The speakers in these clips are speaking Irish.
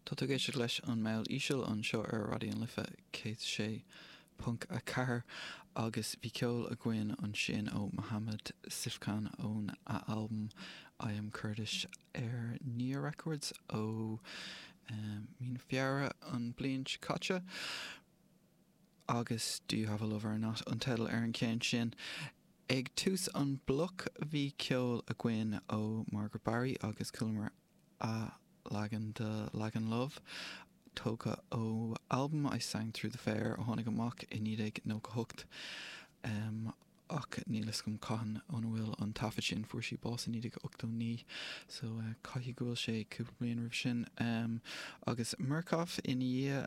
Tá tú ag éisteacht leis an mBaile Íseal anseo ar Raidió an Life 106.4 agus bhí ceol againn ansin ó Mohammad Syfkhan ón a albam I Am Kurdish ar Nyahh Records ó Mí na Feabhra an bliain seo caite. agus Do You Have A Lover Or Not an teideal ar an cheann sin. Ag tús an bloc bhí ceol againn ó Margaret Barry agus chualamar a leagan de Lagan Love, tógtha ó albam I Sang Through The Fair a tháinig amach i 1998, ach níl fhios agam cathain óna bhfuil an taifead sin, fuair sí bás i 1989 so caithfidh go bhfuil sé cúpla bliain roimhe sin, agus Murcof ina dhiaidh.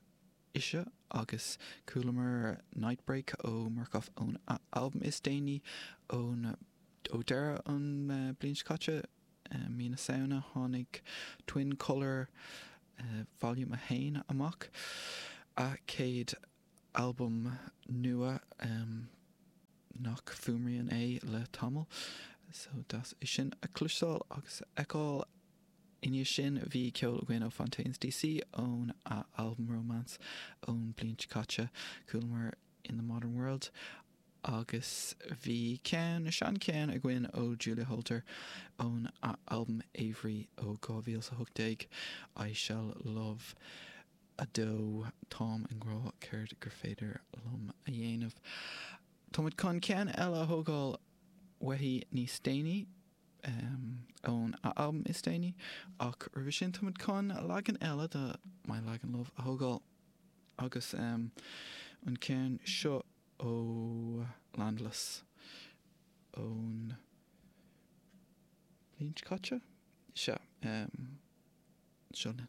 ise agus chualamar Nightbreak ó Murcof ón albam is déanaí ó dheireadh an bliain seo caite, mí na Samhna tháinig Twin Color Volume 1 amach, a chéad albam nua nach fuaimrian é le tamall, so deas é sin a chloisteáil agus a fheiceáil. I ndiaidh sin bhí ceol againn ó Fontaines DC ón a albam Romance ón bliain seo caite, chualamar In the Modern World agus bhí ceann, sean ceann againn ó Julia Holter ón a albam Aviary ó 2018, I Shall Love 2 Táim i ngrá céard gur féidir liom a dhéanamh. Táimid chun ceann eile a thógáil uaithi níos déanaí. ón a albam is déanaí, ach roimhe sin táimid chun leagan eile de My Lagan Love a thógáil, agus an ceann seo ó Landless ón bhliain seo caite? Sea, seo linn.